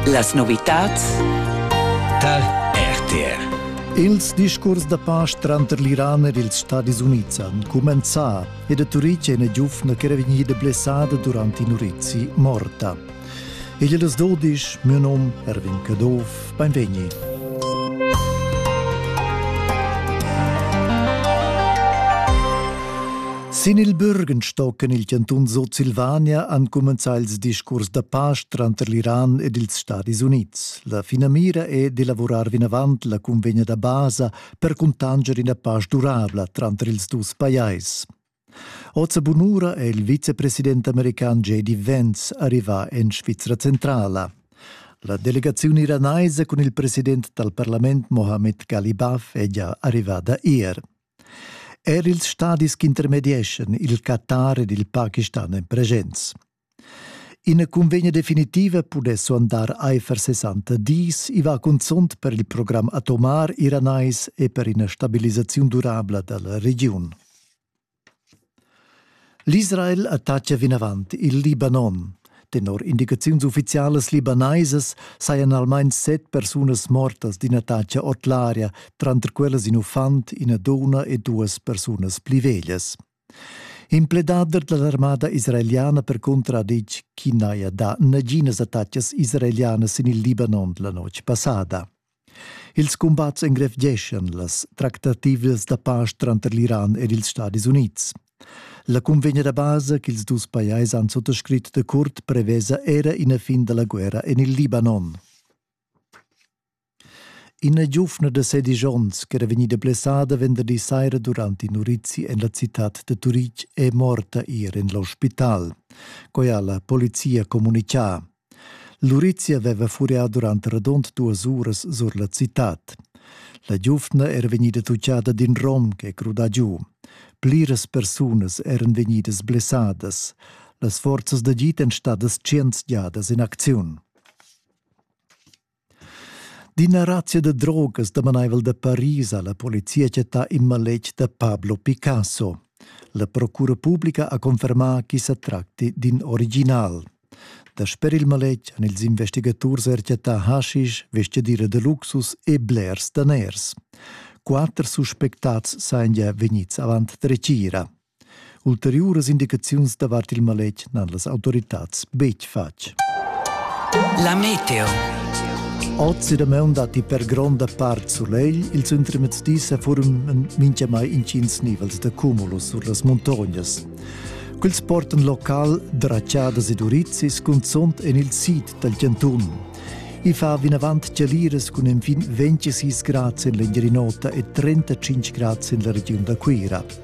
Las novitads dal RTR Ils discurs da pace tranter l'Iran ed ils Stadis Unids han cumenzà ed a Turitg è ina giuvna ch'era vegnida blessada durant in urizi morta. Igl è las dudisch, mio num Erwin Caduff, Beinvegni. Sin il Bürgen stocken il cantun Sutsilvania ancumenza ils discurs da pace tranter l'Iran ed ils Stadis Unids. La finamira è di lavurar vinavant la convegna da basa per cuntanger ina pace durabla tranter ils dus pajais. Oz a bunura è il vicepresident american J.D. Vance arrivà en Svizra centrala. La delegaziun iranaisa cun il president dal parlament Mohammed Galibaf è già arrivada ier. Er ils stadis che intermedieschan il Qatar ed il Pakistan èn presents. Ina cunvegna definitiva pudess suandar aifer 60 dis. I va cunzunt per il program atomar iranais e per ina stabilisaziun durabla da la regiun. L'Israel attacca vinavant il Libanon. Tenor indicaziuns uffizialas libanaisas sajan almain set persunas mortas d'in attacc ord l'aria, tranter quellas in uffant, ina dunna e duas persunas pli veglias. In pledader dall'armada israeliana percunter ha detg ch'i n'haja dà naginas attacas israelianas sin il Libanon la notg passada. Ils cumbats engrevgeschan las tractativas da pasch tranter l'Iran ed ils Stadis Unids. La cunvegna da basa ch'ils dus pajais han suttascrit de Curt prevesa era ina fin dalla guerra en il Libanon. Ina giuvna da sedisch onns ch'era vegnida blessada venderdi saira durant in urizi en la citad da Turitg è morta ier en l'ospital. Quai ha la polizia communitgà. L'urizi aveva furià durant radund duas uras sur la citad. La giuvna era vegnida tuccada d'in rom che è crudà giu. Pliras persunas eran vegnidas blessadas. Las forzas d'agid èn stadas tschient giadas en acziun. D'ina razia da drogas damanaivel da Paris ha la polizia chattà in maletg da Pablo Picasso. La procura publica ha confermà ch'i sa tracti d'in original. Dasper il maletg han ils investigaturs er chattà haschisch, vestgadira da luxus e blers daners. Quatter suspectads sajan gia vegnids avant dretgira. Ulteriuras indicaziuns davart il maletg n'han las autoritads betg fatg. La meteo. Oz da maun datti per gronda part sulegl, ils ultims dis forman mintgamai intgins nivels da cumulus sur las muntognas. Quels portan local draciadas ed urizis, cunzont en il sid dal Giantun. I fa vinavant chaliras cun enfin 26 grads en l'Engiadin'Ota e 35 grads en la regiun da Cuira.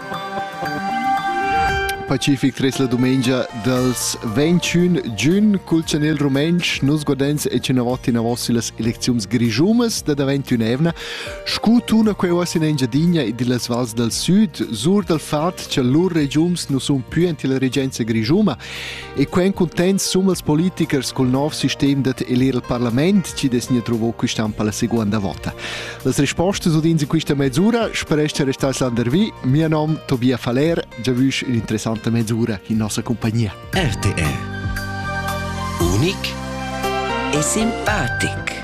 Pacific tres la dumengia dals 21 giun cul chanel rumentsch nus guardens e cinavot inavos illas elecziuns grischumas da da 21 evna scu tuna quei uoss in Engiadina ed illas vals dal sud sur dal fat cha lur regiums nu sun pü ant illa regenza grischuma E quen cuntent summas politichers cul nov sistem dat el ir al parlament, ci des nia trovo quist'ampa la seconda vota. Las rispostas udins in quista mezzura spereste restas landervi. Mia nom Tobia Faller, già vusch un'interessante mezzura in nostra compagnia. RTR Unic e simpatic.